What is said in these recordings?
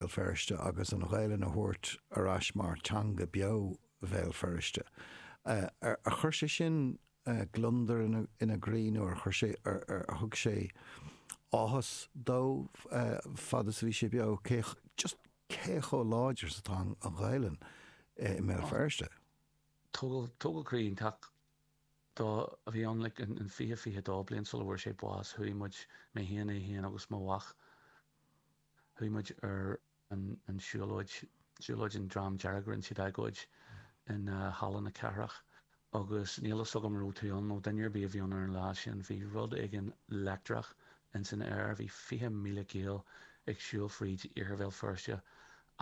Bhéal Feirste agus an Ghaelainn a thabhairt ar ais mar theanga beo Bhéal Feirste. Ar chuir sé sin gliondar ina gcroí nó ar chuir sé, ar thug sé áthas dó fad is a bhí sé beo just cé chomh láidir is atá an Ghaelainn i mBéal Feirste. Tógáil croí iontach dó a bhí ann like in fiche, fiche dó bliain sula bhfuair sé bás. Chuaigh muid, mé féin, é féin agus mo mhac, Chuaigh muid ar an siúlóid, siúlóid an Dream Dearg, rinn siad agóid in Halla na Cathrach agus níl fhios agam raibh tú ann nó duine ar bith a bhí ann ar an lá sin, bhí rud éigin leictreach ins an aer, bhí 20,000 Gael ag siúl fríd Iarthar Bhéal Feirste a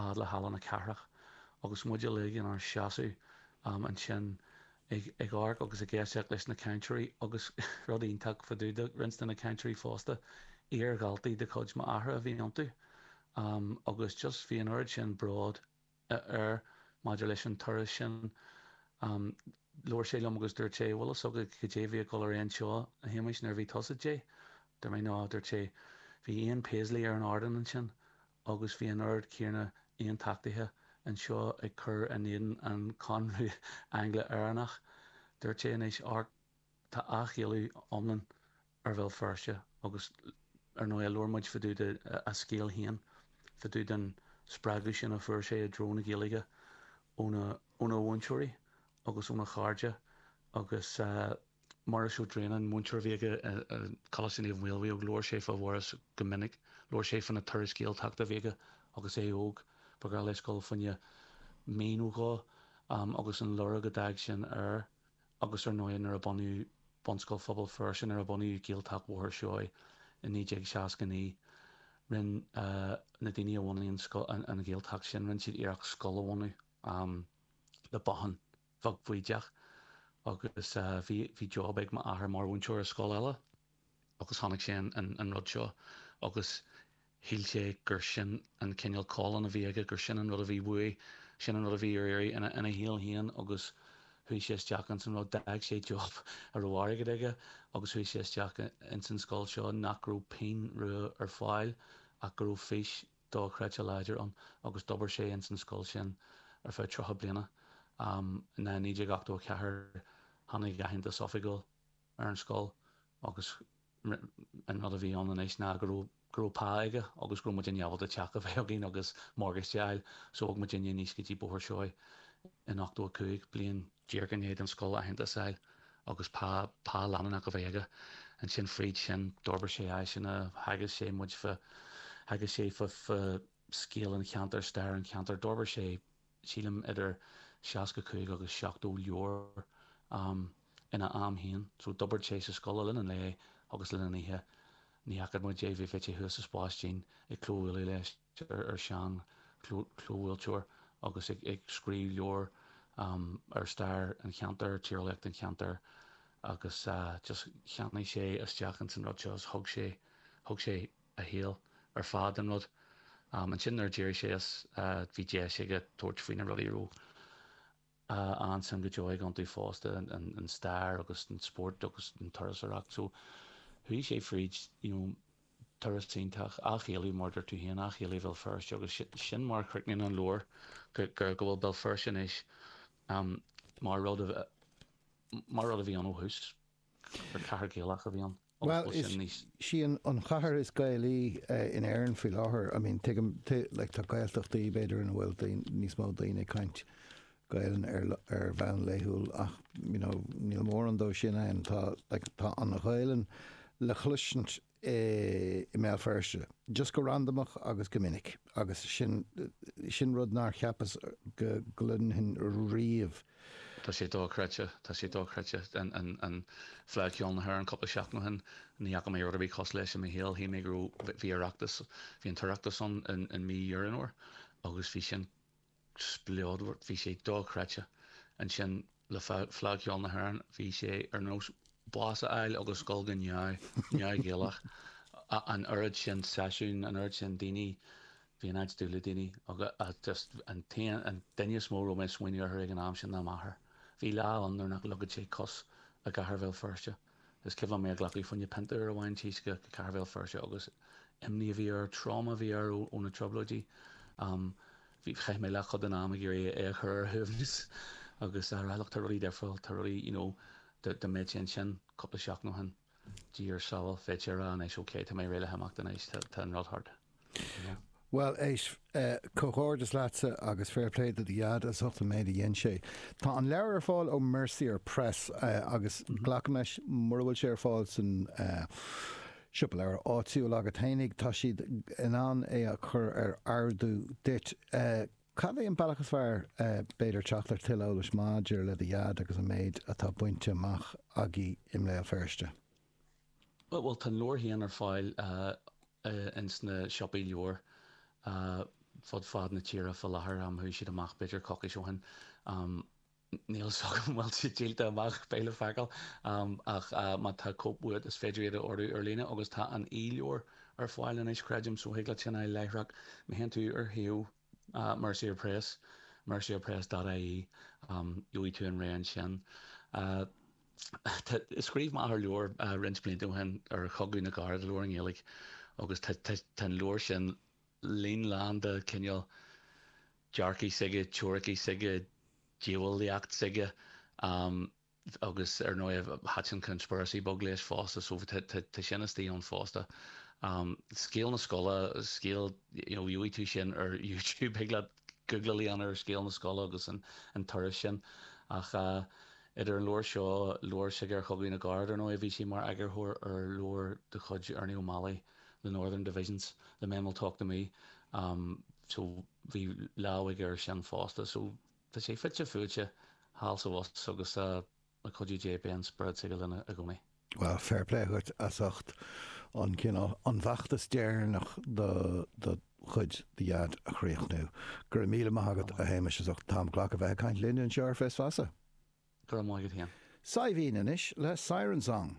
fhad le Halla na Cathrach agus muid uilig inár seasamh ansin, ag amharc agus ag éisteacht leis na cainteoirí agus, rud iontach, fá dtaobh de roinnt de na cainteoirí fosta, iar-dhaltaí de chuid m'athara a bhí iontu agus just bhí an oiread sin bród air maidir leis an turas sin. Labhair sé liom agus dúirt sé, bhfuil fhios agat cad é bhí ag dul ar aghaidh anseo, a Shéamuis, nuair a bhí tusa deich? Dúirt mé, no, a dúirt sé, bhí Ian Paisley ar an ardán ansin agus bhí an oiread céanna Aontachtaithe anseo ag cur in éadan an Chomhaontú Angla-Éireannach. Dúirt sé anois, amharc, tá athghaelú iomlán ar Bhéal Feirste agus ar ndóigh labhair muid fá dtaobh de a scéal féin fá dtaobh den spreagadh sin a fuair sé i dtreo na Gaeilge óna mhúinteoirí agus óna chairde agus Muiris Ó Droighneáin, múinteoir a bhí aige i gColáiste Naomh Maolmhaodhóg, labhair sé fá Mhuiris go minic. Labhair sé fá na turais Gaeltachta a bhí aige agus é óg, ba ghnách leis dul fá choinne mí nó dhó agus an lorg a d'fhág sin air agus ar ndóigh nuair a bunaíodh Bunscoil Phobal Feirste, nuair a bunaíodh Gaeltacht Bhóthar Seoighe i 1969, rinn na daoine a bhunaigh an Ghaeltacht sin, rinn siad iarracht scoil a bhunadh le bothán. bheag bhaoideach agus bhí job ag m'athair mar mhúinteoir i scoil eile agus chonaic sé an rud seo agus shíl sé gur sin an cineál calling a bhí aige, gur sin an rud a bhí uaidh, sin an rud a bhí ar iarraidh ina shaol féin agus chuaigh sé isteach ins an rud. D'fhág sé job a raibh airgead aige agus chuaigh sé isteach ins an scoil seo nach raibh pingin rua ar fáil ach go raibh fís dochreidte láidir ann agus d'obair sé ins an scoil sin ar feadh tríocha bliana. In 1984 tháinig aitheantas oifigiúil ar an scoil agus an rud a bhí ann anois ná go raibh go raibh pá aige agus go raibh muid in ábalta teach a bheith againn agus morgáiste a fháil so bhog muid aníos go dtí Bóthar Seoighe in 85 bliain díreach i ndiaidh don scoil aitheantas a fháil agus pá, pá leanúnach a bheith aige. Ansin, tríd sin, d'fhorbair sé áiseanna, theagasc sé muid fá, theagasc sé fá, fá scéal an cheantair, stair an cheantair. D'fhorbair sé, sílim, idir seasca cúig agus seachtó leabhar ina am féin. So, d'oibrigh sé sa scoil i rith an lae agus i rith na hoíche. Ní fhaca muid é, bhí sé thuas sa spás dín ag clóbhualadh leis. tear ar sheanchlóbhuailteoir agus ag scríobh leabhar ar stair an cheantair, tíreolaíocht an cheantair agus just cheannaigh sé isteach ins an rud seo is thug sé, thug sé a shaol ar fad don rud. Ansin nuair a d'éirigh sé as bhí deis aige tabhairt faoi na rudaí a raibh a shuim go deo aige iontu fosta an stair agus an spórt agus an turasóireacht. So chuaigh sé fríd you know turas iontach athshealbhú mar deir tú féin, athshealbhú Bhéal Feirste agus sin mar a chríochnaíonn an leabhar go bhfuil Béal Feirste anois mar rud a mar rud a bhí ann ó thús. Gur cathair Gaelach a bhí ann? Bhuel, is sí an chathair is Gaelaí in Éirinn faoi láthair. I mean, tuigim, like, tá Gaeltachtaí, b'fhéidir, ina bhfuil níos mó daoine ag caint Gaelainn ar, ar bhonn laethúil ach, you know, níl mórán de sin ann. Tá, like, tá an Ghaelainn le chloisint i mBéal Feirste, just go randamach agus go minic agus sin rud nár cheapas go gcluinfinn riamh. Tá sé dochreidte, tá sé dochreidte. Fleadh Cheoil na hÉireann cúpla seachtain ó shin, ní fhaca mé rud ar bith cosúil leis i mo shaol. Shíl mé go raibh, bhí Oireachtas, bhí an tOireachtas ann i mí Dheireadh Fhómhair agus bhí sin, spleodar. Bhí sé dochreidte. Ansin, le Fleadh Cheoil na hÉireann, bhí sé ar nós bás a fháil agus dhul go neamh, neamh Ghaelach. An oiread sin seisiún, an oiread sin daoine, bhí an áit dubh le daoine agus just an t-aon, an duine is mó a raibh mé ag smaoineamh orthu ag an am sin ná m'athair. Bhí lá ann nuair nach leogfad sé cos i gcathair Bhéal Feirste. Is cuimhin liom é a ghlacadh fá choinne pionta uair amháin, 'dtí go cathair Bhéal Feirste agus imní a bhí air, tráma a bhí air ó na Trioblóidí. Chaith mé leathchuid den am ag iarraidh é a chur ar a shuaimhneas agus a rá leis, tá rudaí difriúil, tá rudaí, you know, dá mbeadh sé ansin cúpla seachtain ó shin, Dia ar sábháil, bheadh sé ag rá anois, okay, tá mé réidh le himeacht anois, tá an rud thart. Bhuel, éist, comhghairdeas leatsa agus fair play do do dheaid as ucht an méid a dhein sé. Tá an leabhar ar fáil ó Mercier Press agus glacaim leis mura bhfuil sé ar fáil san siopa leabhar áitiúil agat fhéinig, tá siad in ann é a chur ar ordú duit. Cad é an bealach is fearr, b'fhéidir, teacht ar tuilleadh eolais maidir le do dheaid agus an méid atá bainte amach aige i mBéal Feirste? Bhuel, tá an leabhar féin ar fáil insna siopaí leabhar fud fad na tíre fá láthair, chuaigh siad amach b'fhéidir coicís ó shin, níl fhios agam an bhfuil siad díolta amach, beidh le feiceáil, ach má tá cóip uait is féidir iad a ordú ar líne agus tá an e-leabhar ar fáil anois creidim so thig leat sin a fháil láithreach, má théann tú ar shuíomh. Mercier Press, mercierpress dot ie, gheobhaidh tú an raon sin. Scríobh m'athair leabhar roinnt blianta ó shin ar Chogadh na gCarad, leabhar i nGaeilge, agus tá an leabhar sin lomlán de chineál dearcaidh s'aige, teoiricí s'aige, diabhalaíocht s'aige. agus ar ndóigh thaitin conspiracy beag leis fosta so tá sin istigh ann fosta. Scéal na Scoile, scéal you know gheobhaidh tú sin ar YouTube thig leat googláil a dhéanamh ar scéal na scoile agus an turas sin ach idir an leabhar seo, leabhar s'aige ar Chogadh na gCarad ar ndóigh bhí sé mar eagarthóir ar leabhar de chuid Ernie O'Malley The Northern Divisions, The Men Will Talk to Me so bhí lámh aige air sin fosta so. Tá sé fite fuaite thall is abhus agus le cuidiú Dé beidh an spiorad s'aige linn i gcónaí. Bhuel, fair play dhuit as ucht an cineál, an feachtas deireanach do do chuid, do dhaid a chríochnú. Go raibh míle maith agat, a Shéamais, as ucht an t-am a ghlacadh a bheith ag caint linn anseo ar Fios Feasa. Go raibh maith agat féin. Saidhbhín anois le Siren Song.